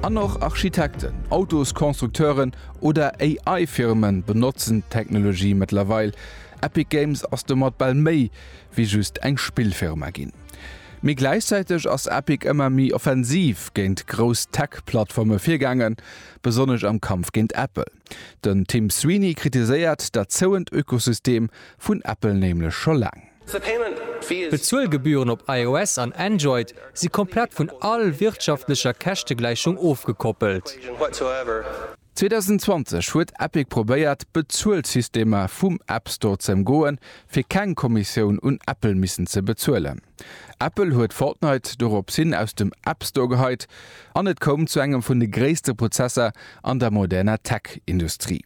An och Architekten, Autoskonstrukteuren oder AI-Firmen benotzen d'Technologie mëttlerweil. Epic Games ass domat bal méi wéi just eng Spillfirma ginn. Mee gläichzäiteg ass Epic ëmmer méi offensiv géint grouss Tech-Plattforme virgaangen, besonnesch am Kampf géint Apple. Den Tim Sweeney kritiséiert dat zouend Ökosystem vun Apple nämlech scho laang. D'Bezuelgebühren op iOS an Android si komplett vun all wirtschaftlecher Käschtegläichung ofgekoppelt. 2020 huet Epic probéiert, d'Bezuelsystemer vum App Store z'ëmgoen, fir keng Kommissioun un Apple missen ze bezuelen. Apple huet Fortnite doropshin aus dem App Store geheit an et koum zu engem vun de gréisste Prozesser an der moderner Tech-Industrie.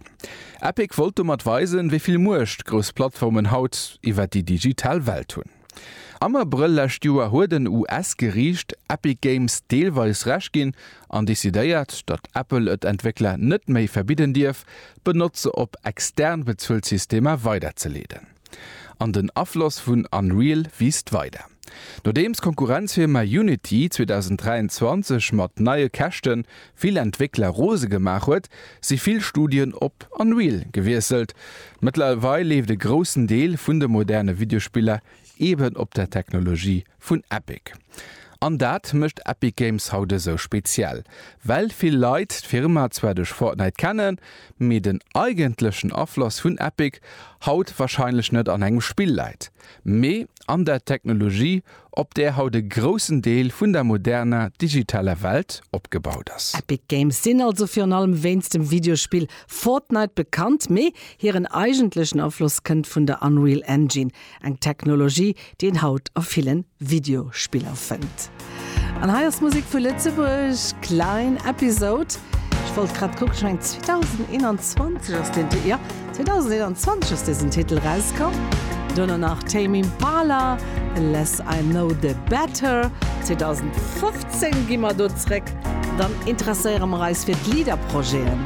Epic wollt domat weisen, wéi vill Muecht grouss Plattformen haut iwwer déi digital Welt hunn. Am Abrëll lescht Joer huet en US-Geriicht Epic Games deelweis Recht ginn an decidéiert, datt Apple et Entwéckler net méi verbidden dierf, d'Benotzer op extern bezuelt Systemer weiderzeleeden. An den Afloss vun Unreal wiisst weider. Nodeems d'Konkurrenzfirma Unity 2023 mat neie Käschte vill Entwéckler rose gemaach huet, si vill Studien op Unreal gewiesselt. Mëttlerweil leeft e groussen Deel vun de moderne Videospiller eben op der Technologie Vun Epic. An dat mécht Epic Games haut esou speziell. Well vill Leit d'Firma zwar duerch Fortnite kennen, mee den eigentlechen Afloss vun Epic haut warscheinlech net an engem Spill läit, mee an der Technologie, op där haut e groussen Deel vun der moderner digitaler Welt opgebaut ass. Epic Games sinn also virun allem wéinst dem Videospill Fortnite bekannt, mee hiren eigentlechen Afloss kënnt vun der Unreal Engine. Eng Technologie, déi een haut a villen Videospiller fënnt. An hei ass Musik vu Lëtzebuerg, Klein Episode. Ech wollt grad kucken, ech mengen 2021 ass deen Ti-, jo, 2021 ass desen Titel rauskomm. Duerno nach Tame Impala, Less I Know The Better. 2015 gi mer do zréck, dann interesséiere mer eis fir d'Leader-Projeten.